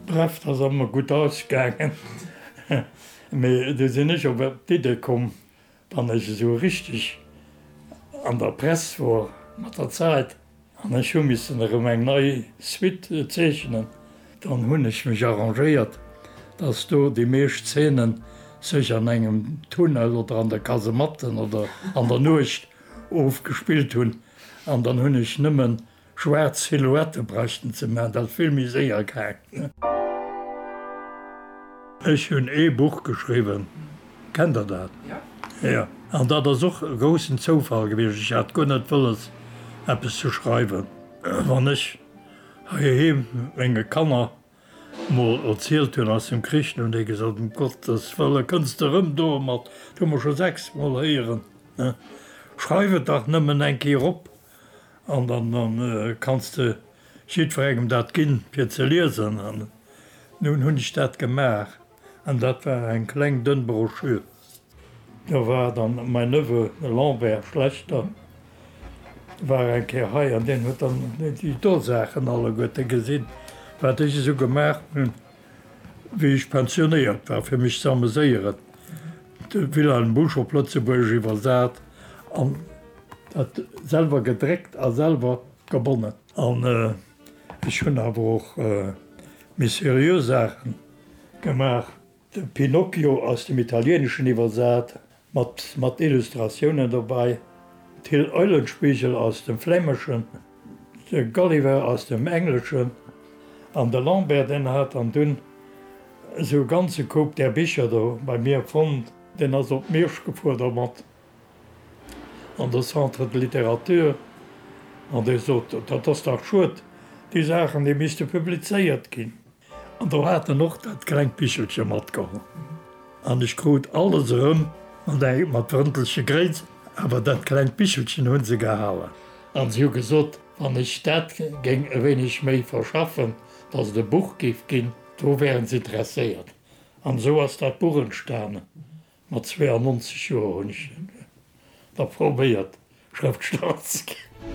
Bref, dat ass ëmmer gutt ausgaangen, mee du sinn ech op d'Idde komm, wann ech esou richteg an der Press wor mat der Zäit an ech hu missen erëm eng nei Suite zeechnen, dann hunn ech mech arrangéiert, dass do déi meescht Zeenen sech an engem Tunnel oder an der Kasematten oder an der Nuecht ofgespillt hunn an dann hunn ech nëmmen Schwaarz Silhouette bräuchten ze man, dat ass vill méi séier gaang. Ech hunn ee Buch geschriwwen, kennt der dat? Jo. An dat ass och e groussen Zoufall gewiescht, ech hat guer net wëlles eppes ze schreiwen. Wann ech heiheem menge Kanner Mol erzielt hien eis dem Krich no, dee gesot, Um Gottes Wëlle kënns de erëm domat, dat hu mer scho sechs Mol héieren, schreif et dach nëmmen eng Kéier op an dann kanns de jiddwerengem dat ginn, fir ze liesen. An nun hunn ech dat gemaach. An dat war eng kleng dënn Broschür. Da war dann mäin Neveu, de Lambert Schlechter, war eng Kéier hei an deen huet dann déi do Saachen alleguerte gesinn, wat ech esou gemaach hunn, wéi ech pensionéiert war, fir mech ze ameséieren, de Wilhelm Busch op Lëtzebuergesch iwwersat an dat selwer gedréckt a selwer gebonnen. An ech hunn awer och méi seriö Saachen. Gemaach. De Pinocchio aus dem Italieneschen iwwersat, mat Illustratiounen dobäi, d'Hill Eulenspiegel aus dem Flämeschen, de Gulliver aus dem Engleschen an de Lambert deen hat an dunn esou e ganze Koup där Bicher do bei mir fonnt. Deen ass op Miersch gefuer domat an de Centre de Littérature an dee sot, dat ass dach schued, déi Saachen déi misste publizéiert ginn. An do hat en och dat klengt Bichelche matgeholl. An ech krut alles erëm mat Drëntelche Gréit, awer dat klengt Bichelchen hu se gehalen. An si hu gesot, wann ech dat géing e wéineg méi verschaffen, datt et e Buch géif ginn. Do wären se interesséiert. An esou ass dat Buch entstanen. Mat 92 Joer hunn ech da probéiert, Schrëftsteller ze ginn.